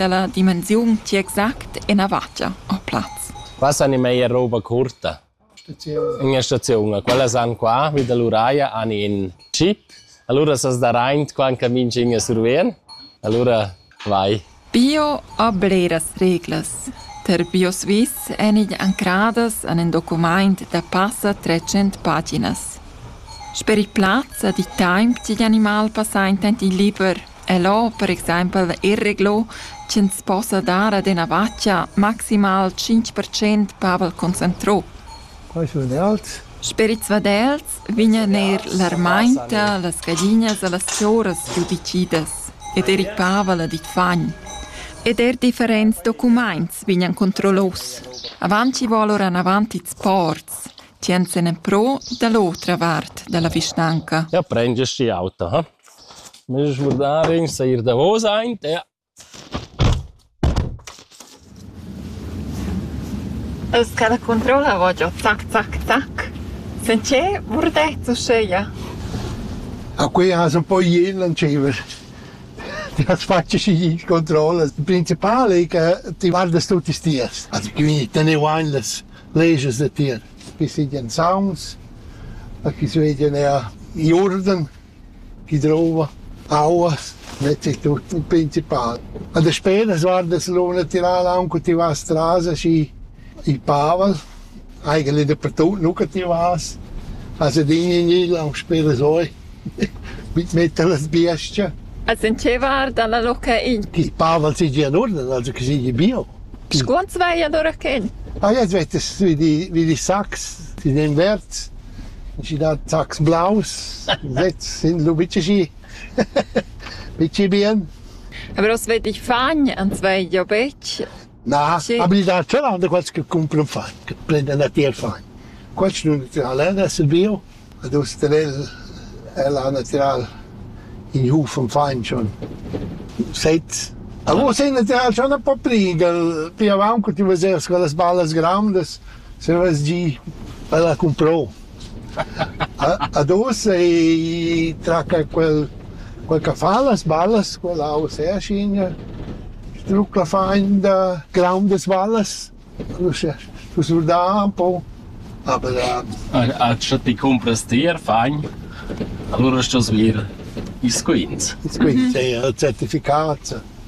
dalla dimensiun ti exact ena vatga o plaz. Passan in meia roba curta. In ina staziun. Quella san qua, vid all'uraia, han in chip. Allora sas da reint qua in camin scin a survien. Allora vai. Bio a bleras reglas. Per BioSwiss èn igl ancradas an in documaint da passa 300 paginas. Sper il plaz a di taimp tigl animal passa intent il liber El ho per exaimpel irreglo ch'ins possa dar ad üna vacha maximal tschinch per cent pavel concentrà. Quai sun els. Sperids vadels vegnan eir l'armainta, las gaglinas e las choras giudicidas ed eir il pavel ad il fagn. Ed eir differents documaints vegnan controllos. Avant chi vo alura anavant ils ports, tschient sen en pro da l'otra vart da la vischnanca. Ja prendes die Auto, ha? Nus schmurdarin seir davos aint e... Els ca da controllavan giò tac tac tac, sincer murdets uscheia. A quei hasen poi jien lantschevas. Ti has fatg schi il controll. Il principal ei che ti guardas tutis tiers. Also quindi teneu ein las leges da tier. Chi sigien sauns, a chi sveglien er i urden. chi drouva aua mette tut in principal. A desperas guarda se l'ura natürala aunc co ti vas tras aschi il pavel, eigentlich dappertut nu che ti vas, also din in il aunc speras oi mit metter las biestge. As intscheivar dalla loca in. Ch'il pavel segia in urden, also che segia bio. Scuonz vai allora chen? Ah ja, es vetes, wie die, wie die Sachs, die den Wärts. Schi da sachs blaus sez sin lu bitg aschi bitg bien. Aber was wett ich fagn anzwei ja betg. Na, aber il da Zeland è quels che cumpran fagn, che prendan a tier fagn. Quels nun natural è da Silvio, ad us tevel el ha natural in huf am fagn schon. Seit A vos è natural schon un po' pli, che pi avant cu ti veses quellas ballas grandas, Se vess gì, el ha cumprò. Ad ussa i traca quel, quel ch'a fa las ballas, quella ussa è aschigna, strucla fainda, graundas ballas, ussa stu surdar ün po, aber A scha ti cumpras tier fain, alura stos vir ils quints. Ils quints, ja, il certificat.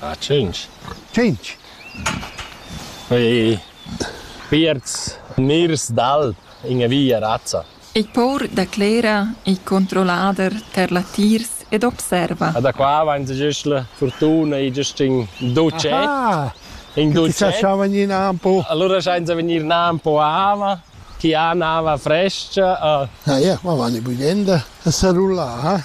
Ah, tschintg. Tschintg. Fai pierts mirs d'alp in via razza. Il paur declera il controllader per latiers ed observa. Da qua va in giuschla fortuna e giust in duce. Ah, in duce. Ti sa schavan in ampo. Allora senza venir un ampo ava, chi ha un'ava fresca. Ah, ja, ma vanno budenda a salulare.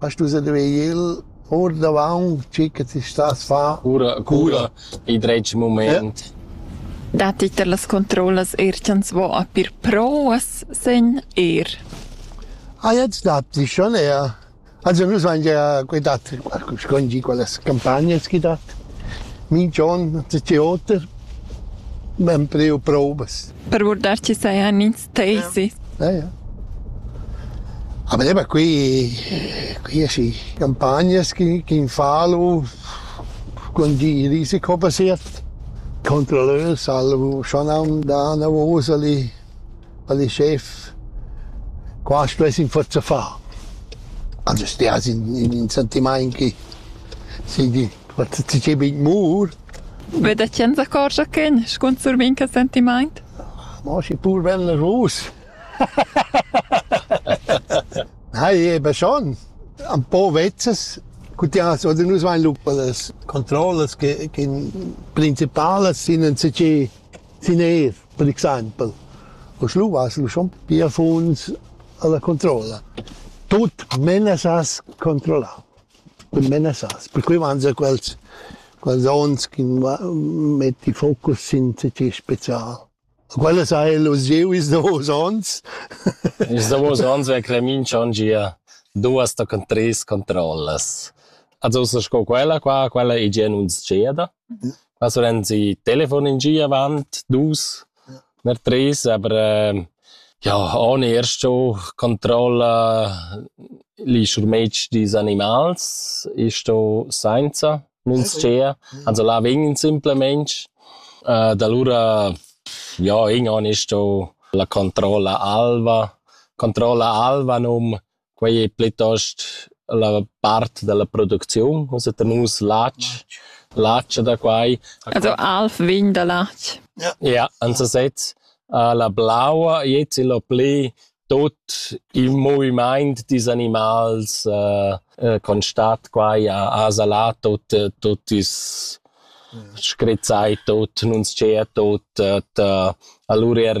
A stusa vegnir ordavant tgi che ti stas a far. Cura, cura, il dretg mument. Datti che las controllas er ch'ans vo a pir provas sen er. Ah, jetzt datti schon eher. Also nus van ja quei dat scongi quelles campagnes chi dat. Mi John, ti oter. Ben preu provas. Per guardarci sajan ins Tei sì. Ja, ja. A me qui qui asci campagnas chi chi fa lu con di risico passiert contra leu salvo schon am da na vosa li ali chef qua stes in forza fa also stias in in in sentimain chi si di Wat ti che bin mur? Be da chen s'accorgia chen, scunzur minca sentimaint? Ma schi pur ven la rus. Nei, eben schon. Ein paar Wetzes. Gut, ja, also nus vain lupa las controllas che, che in principalas sind ein CC sind er, per exempel. O schlu vas lu schon pia funs alla controlla. Tut menas as controlla. cun menassas. Per cui mangia quels, quels ons chi metti focus sin tgi special. Quellas ha el usieu ils davos ons. Ils davos ons vegn Cremin schon gia duas tochen treis controllas. Also ussa sco quella qua, quella ei gia nun sceda. Also ren sie Telefon in Ski avant, dus, ner tres, aber äh, ja, ohne erst schon Kontrolle li schurmetg dis animals ist da senza nun's cia, also là vegn simplemente äh, da allora ja, irgendwann ist da la Kontrolle alva, Kontrolle alva num Quei ei plitost la part dalla producziun, ussa tenus latg, latg da quai. Also alv vin da latg. Ja, en sesez. La blaua jez il ho pli tut il movimaint dils animals constat quai a salà tut tut is scrizzai tut, nun tschea tut, allura er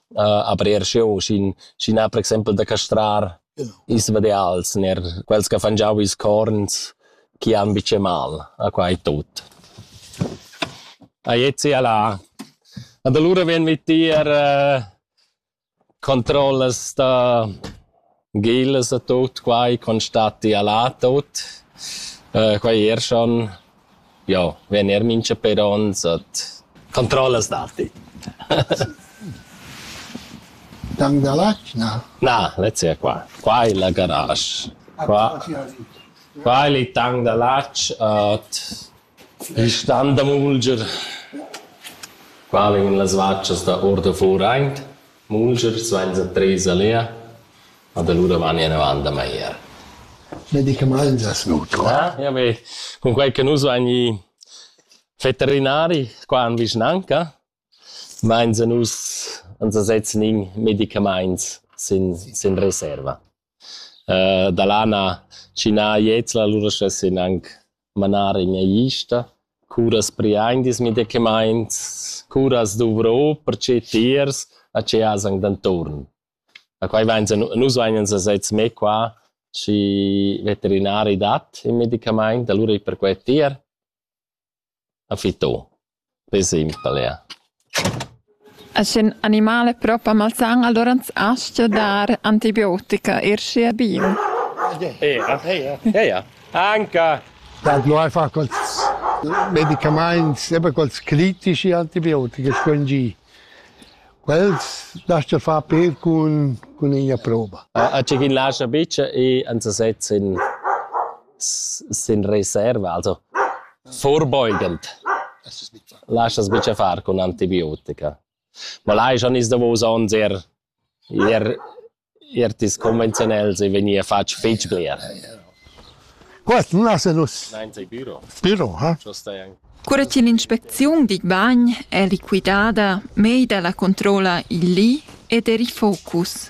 a brer scheu sin sin per exempel da castrar ils vadeals ner quels che fan giau ils corns chi han bice mal a quai tut a Jezi alla und allora ven mit dir controllas da Gillas e tut quai constatti ella tut. Quai er schon, jo, vegn eir mincha pér ons ad controllas datti. Tang da latg, na? Na, lez è qua. Qua è la garage. Qua, qua è il tang da latg, Il stan da mulger, qua vegnan las vatschas da ordavor aint, mulger svainsa treis a Lea, ad alura vagna inavant da magliar. Ne di che mangias nu tu? Ah, ja be, cunquai che nus vain i veterinari qua in vischnanca, vainsa nus, ans sezzan in medicamaints sin, sin reserva. Da là na tschinà jezla, alura schessin anc manar in mia ista. Curas priaindis medicamaints, curas dovrò perche tiers a che as han d'intuorn. Da quai vains nus vagnans a sez mê qua, schi veterinari dat il medicamaint, alura i per que tier. A fitô, per esempel eir. E sch'ün animal es prop a malsan, alura ans astga dar antibiotica, eir schi è bin. Eira, eira, eira. Anca! Dad no ai fa quels medicamaints, sempre quels critici antibiotiche sfrangì. Quels lascia far per cun, cun üna prova. A tg'in lascia bitsch e ans sezza in Sin reserva, also vorbeugend, laschas buca far cun antibiotica. Ma lai schon ils davos onns er, er, er tis conventionels e vegnir fatg fetg bler. Quest non ha nus. Nein, sei büro. Büro, ha? Cura che l'inspecziun di bagn è liquidada, mei dalla controlla il li ed eri focus.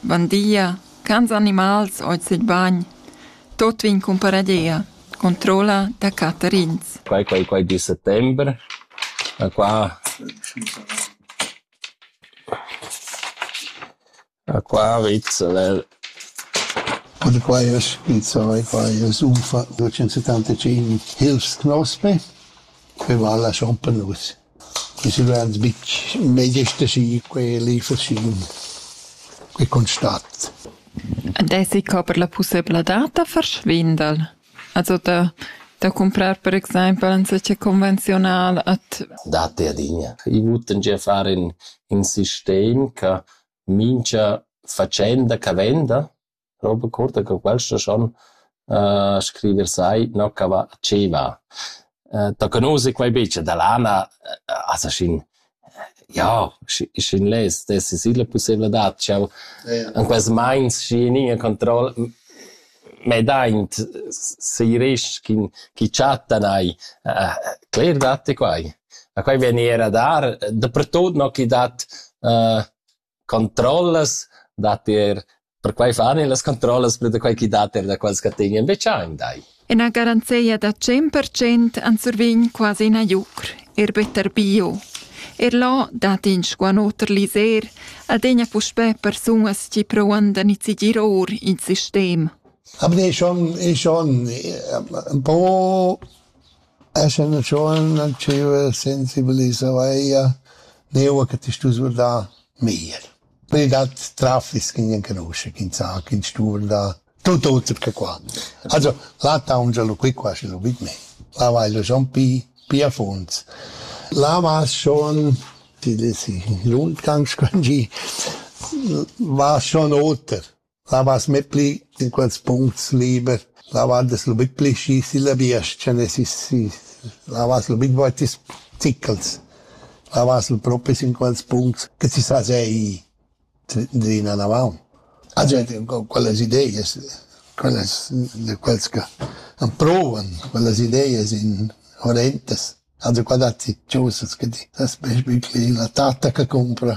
Bun dia, cants animals hoz il bagn. Tot vegn cumparadia. Controlla da catterins. Quai, quai, quai di settembre. A qua A qua Rizzolel. Und qua ist, mit zwei, qua ist Ufa 275 Hilfsknospe. Wir waren schon penus. Ise vans bitg mei gesta schi quelli facin quei constat. Ed esi co per la pussebladad da far schvindel? Also da da cumprar per exaimpel enzatgè convenziunal ad Datti adina. I vuttan gia far in in sistem cha mincha fatschenda cha venda Roba curta co quels da schon scriver sai no cha va chi va. Da conoser quai be cha da lana as schin ja schin less dess es illa pussaivladad ch'eau in quels mains schi in iin controll m'daint seiresc chi chattan eir. Cler datti quai. Ma quai vegni eir a dar, dapertot no chi dat controllas dat er perquai fan e las controllas per da quai chi dat er da quels che tegnan veciain dai. Ina garanzia da 100% an survign quasi ina iucr, er better bio. Er là dat in squanoter liser adegna puspè persunas chi provan da nizigir or in sistem. Aber ich schon, ich schon ein paar Escha üna tschuonna dschüva sensibilisa veia, neua che ti stus vurdar meglier. Pöi dat traffic chi gnan canuscha, chi ün sa, chi ün stu vurdar, tut oter che qua. Also, là taungia lu qui quasi lu vid mei. Là vai lu schon pi, pi a funds. Là vas schon, ti desi, lund ganz quangì, vas schon oter. Lavas metpli in quels puncts liber, lavand es lu bit pli schi silla biestga ne sis, sis. Lavas lu bit voitis zichels. Lavas lu propris in quels puncts che ti sa sei drina navaun. A gente quellas ideias, quellas de quels che han provan, quellas ideias in horrentas. Also qua datti chosas che ti sas best bit pli la tatta che cumpra.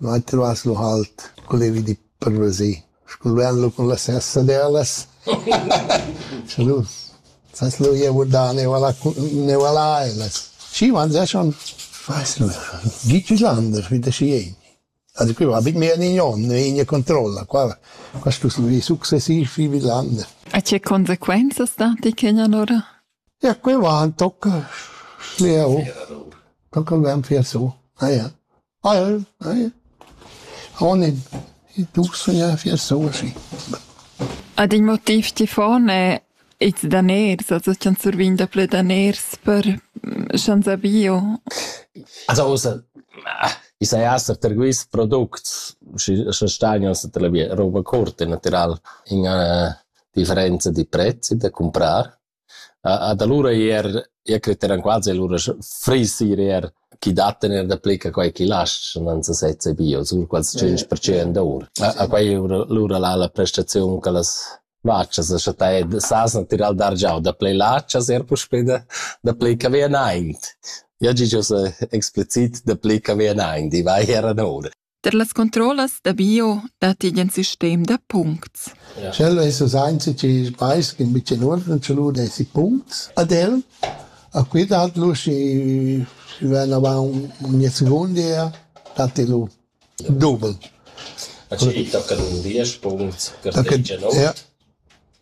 Dvainti vas lu halt cul evi di parvesì, scu'l vegn lu cun la sessa d'elas. Scha nu sas lu jeu da neuala neuala elas. Schi, ma sa schon, fais lu, gitti Sander, wie das jen. Also qui va bit mehr in Jon, in controlla, qua qua stus vi successiv vi Villander. A che consequenzas dati che allora? Ja, qui va tocca schliau. Tocca il vem fier su. Ah ja. Al eh? Oh nen, i dus saja fier soschi. Ad in motiv chi fon è ils daners, also ch'ans survign daplü daners per sch'ans ha bio. Also ussa, i saja esser per quists products, sche stagn ussa per la via roba curta, natüral, in üna differenza di prezzi da cumprar. Ad alura eir, io creteran quasi alura frissi ir eir chi dattan eir daplü che quai chi laschan, non sa sezza bio, sur quels tschinch percent our. A quai lura la la prestaziun che las vachas a chattà e s'hasan tirà dar già daplü lachas eir puspè daplü che vi anaint. Io giaja ussa explicit daplü che vi anaint, i va eir ad oura. Per las controllas da bio datti in sistem da puncts. Sch'el es us ainzi chi vais in bicin uorden ch'el u desi puncts ad el, a qui dat lu schi ven avant ogni secondia datti lu doble. A chi tocca un 10 punct, che fece no? Ja.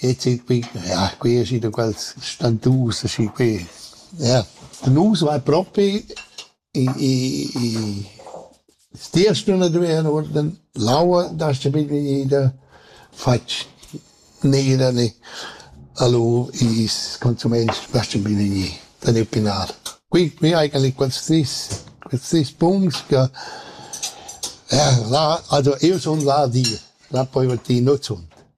Jetzt ich bin ja ich bin in quels stantus aschi qui. Ja. Nus vai propi i i i stia stuna duver uorden l'aua da sta bit ida fatg nera ne allor is consuments lascia bin gnir da ne pinar. Qui qui eigentlich quels tris quels tris punts che ja là also io sun là di, là poi ti nu zunt.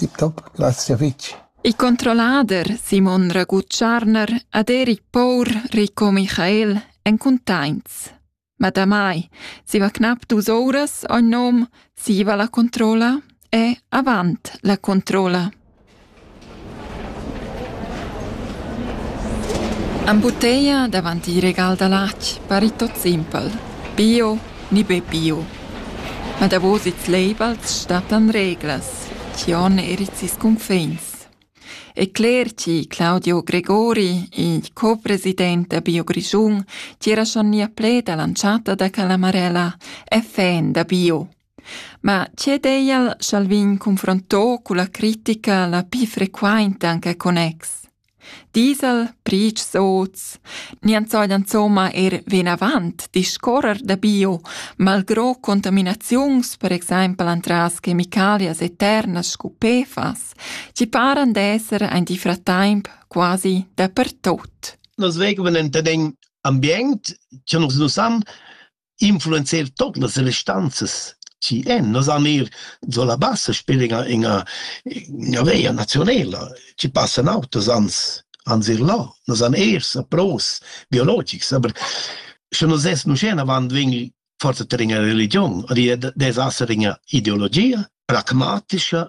Tip top, grazia fitg. Il controllader Simon Ragutscharner ad Eric Pour Rico Michael èn cuntaints. Ma damai siva cnap dus ouras ogn nom siva la controlla e avant la controlla. Am butteia davanti il regal da lac parit tot simpel. Bio ni be bio. Ma davos ils labels stattan reglas, chi on er ils sis cunfins. E cler chi Claudio Gregori, il co-president da Bio Grischun, tira schon nia pled all'anchata da Calamarella, è fan da bio. Ma c'è deial sch'al vin confronto culla critica la pi frequainta anche con ex? Diesel, brigs oz. Nians sajan insomma er vinavant discorrer da bio, malgrò contaminaziuns, per exempel antras chemicalias eternas scu PFAS, ci paran d'esser ein di fratemp quasi dapertot. Nos vegeben enta d'en ambient, che nus nus han, influenzer tot las restanzas chi en nos anir do la bassa spir ina ina ina veia nazionela chi passan autos ans ans ir là nos an ers a pros biologics aber sche nos es nu scena avant vegn forza ter ina religion ri des asser ina ideologia pragmatischa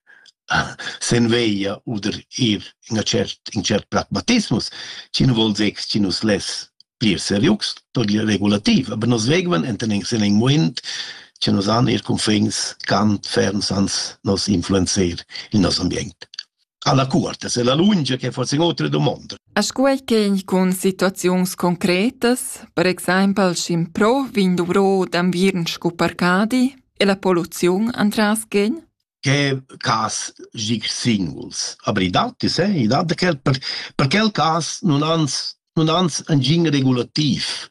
sen veglia oder ir in cert in cert pragmatismus chi nu voul dir chi nu's less plir serius toglia regulativ aber nos vegvan enten in sen in muond cha nus han eir cunfins cant ferms ans nos influenzer il nos ambient alla cuorta se la lungia che forse in otra domanda a scuai che in con situaziuns concretas per exaimpel schimpro vin dovro d'anviern scu parcadi e la poluziun antras gen che cas gig singuls. Aber i dat es, eh? I dat da quel, per, per quel cas nun ans, nun ans engin regulativ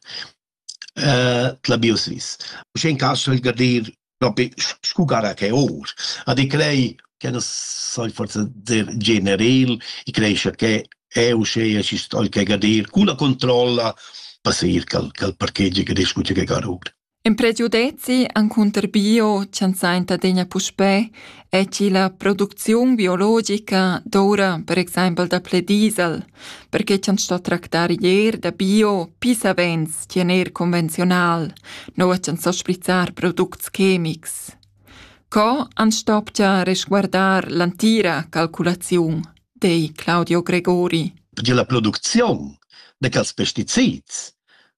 uh, la biosvis. Uschè in cas soll gadir propi scu gara che or. Ad i crei che non sai forse dir generel, i creesce che è uscea ci stoi che gadir cu la controlla per sir cal, cal parcheggio che discuce che garur. In pregiudezi encunter bio ch'ans sainta adegna puspè es chi la producziun biologica doura per exaimpel daplè diesel, perche cha'ns sto tractar ier da bio pü savens chi en eir convenziunal, noua ch'ans sto sprizzar products chemics. Co ans stopcha resguardar l'antira calculaziun, di Claudio Gregori. Perche la producziun da quels pesticids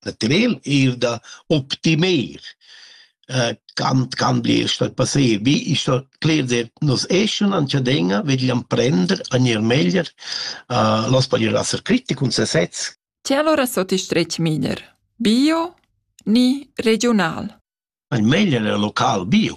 da tener ir da optimer äh, kann kann dir statt passé wie ich so clear der nos eschen an chadenga vegliam prender an ihr meglier äh, los pa ir asser kritik und sesez Ti allora sotto strech miner. Bio ni regional. Ein meglier local bio.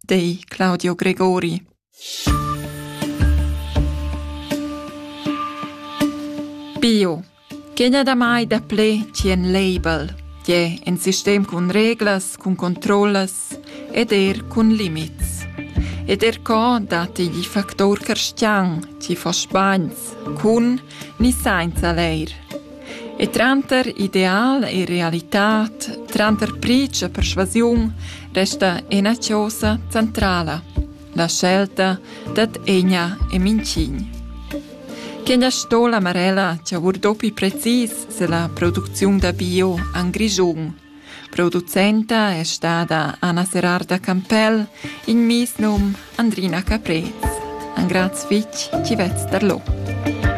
di Claudio Gregori. Bio. Quegna damai daplè chi en label, tie in sistem cun reglas, cun controllas ed er cun limits. Ed er co datti gli factor carstian, ci fos bagns, cun ni sainza leir. E tranter ideal e realitad, tranter pricia e persuasiun, resta ena chiosa centrala, la scelta dad egna e mincign. Quegna sto la Marella chavur dopi precis se la producziun da bio an Grischun. Producenta è stata Anna Serarda Campell in mis num Andrina Caprez. An graz fitg ci vez darlo.